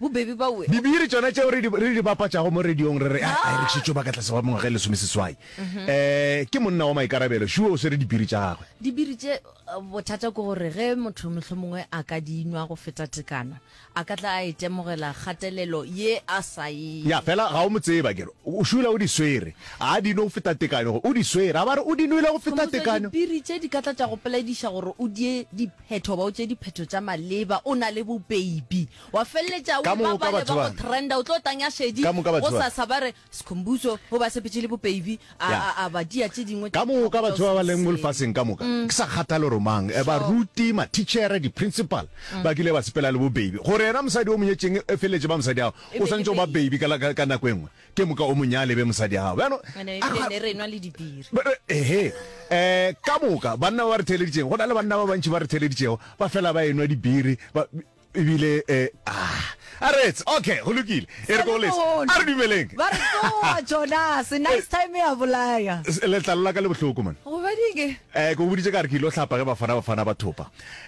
Bobebe ba uwe. Dibiri tšona tšeo re di, re di bapatšago mo radiong re re a e rekišitšwe baka tlase ba mengwaga e lesomeseswai. Mhm. Eh, ke monna wa maikarabelo, sure o swere dibiri tša gagwe. Dibiri tše eh, bothata ke gore ge motho mohlomongwe a ka di nwa go feta tekano, a ka tla a itemogela e kgatelelo ye a sa e. Ya, fela ga o mo tseba kere. O šula o di swere. A di nwe go feta tekano, o di swere. A ba re o di nwele go feta tekano. Dibiri tše di ka tla tša go polediša gore o die di phetho ba o tše diphetho tša maleba o na le bopeibi wa feleletša o ba bale ba go trenda o tlo tanya šedi go sa sa ba re sekhombuso o ba sepetše le bopeibi a ba dia tše dingwe ka moka batho ba ba leng mo lefaseng ka moka mm. ke sa kgathale gore mang eh, ba ruti ma teacher di principal mm. ba kile ba sepela le bopeibi gore yena mosadi o monyetšeng e feleletše ba mosadi ao o santse o ba baby ka ka nako engwe Ke moka o mo nyale be mosadi a gago. Bjano, Ene a- ne re nwa le dibiri. Ba- ba- Ehe. Eh, ka moka, banna ba ba re theeleditšego, go na le banna ba bantši ba re theeleditšego, ba fela ba enwa dibiri, ba, ebile, eh, ah, a retse, okay, go lokile. E re ko lesa. Selemono. A re dumeleng. Ba re tsoa Jonas, nice time ya bolaya. S- Letlalo la ka le bohloko, man. Gobadike. Eh, ke go boditše ka re ke ile go hlapa ge bafana bafana ba thopa.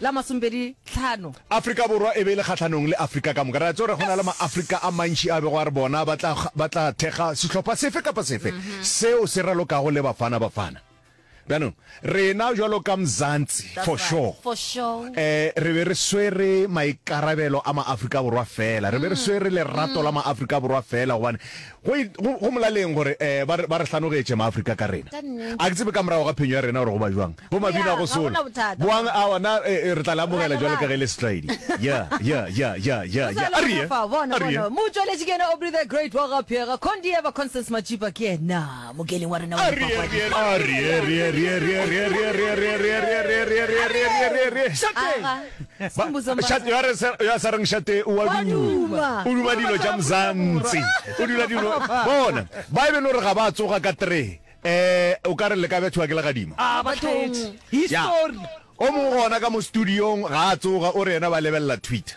la masomepedi tlhano. Afrika Borwa e be e le kgahlanong le Afrika ka moka. Re a tseba gore go na le Maafrika a mantši a bego a re bona ba tla, ba tla thekga sehlopha sefe kapa sefe seo se ralokago le Bafana Bafana. Bjanong, rena bjalo ka Mzansi, That's for right. sure, For sure. eh, re be re swere maikarabelo a Maafrika Borwa feela. Re be re swere lerato la Maafrika Borwa feela gobane Go, go, go molaleng gore eh, ba re, ba re hlanogetše Maafrika ka rena. A ke tsebe ka morago ga phenyo ya rena gore go ba bjang. Bo mabina a go sola. Boang awa na eh, eh, re tla le amogela jwalo ka ge le setlwaedi. Ya, ya, ya, ya, ya, ya. A re ye. A re ye. Motšweletši ke yena Aubrey the Great wa ga Pheega. Condieva Constance Matšipa ke yena. Mokeli wa rena wa dipapadi. Eh o ka re le ka bjathiwa ke legadima ah, o mo gona ka mo studiong ga a tsoga o re yena ba lebelela twitter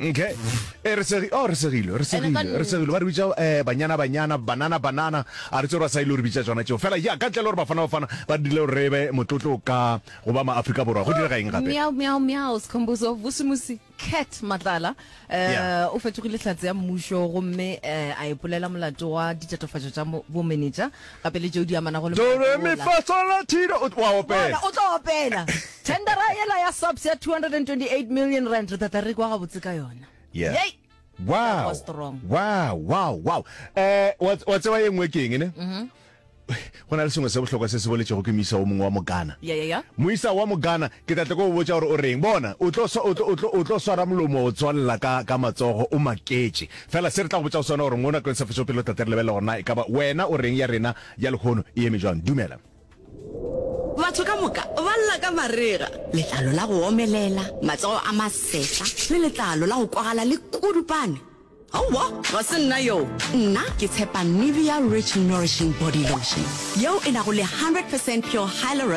Okay. E re segi oh re segilo re segilo re segilo ba re bitsa eh banyana banyana banana banana a re tsora sa ile re bitsa tsona tseo fela ya ka tlelo re bafana bafana ba dile re be motlotlo ka go ba ma Afrika borwa go dira ga eng gape miao miao miao skhombuzo busumusi cat matlala eh o fetogile tlatse ya mmusho go mme eh, a ipolela molato wa ditatofatso tsa bo manager Gape le tšeo di amanago le molato Doremi wola. fa sol la ti do, o t- wa opela. Bona, o tlo opela. Tendera yela ya SAPS ya 228 million rand re tata re kwa gabotse ka yona. Yeah. Yei! Wow. was strong. Wow, wow, wow. Eh, wa wa tseba ye nngwe ke eng ne? Go na le sengwe se bohlokwa se se boletšego ke moisa o mongwe wa Mogana. Ya, ya, ya. moisa wa mogana ke tla tle ko o botsa gore o reng bona o tlo swa- o tlo- o tlo- o tlo swara molomo o tswalela ka ka matsogo o maketše Fela se re tla go botša go sona gore mo nakong sa fetšo pele tate re lebelele gore na e ka ba wena o reng ya rena ya lehono e eme jwang. Dumela. Batho ka moka ba lla ka marega, letlalo la go omelela, matsogo a masehla, le letlalo la go kwagala le kudupane. Aowa, ga se nna yoo. Nna ke tshepa Nivea Rich Nourishing Body Lotion, yeo e nago le 100 percent pure hyaluron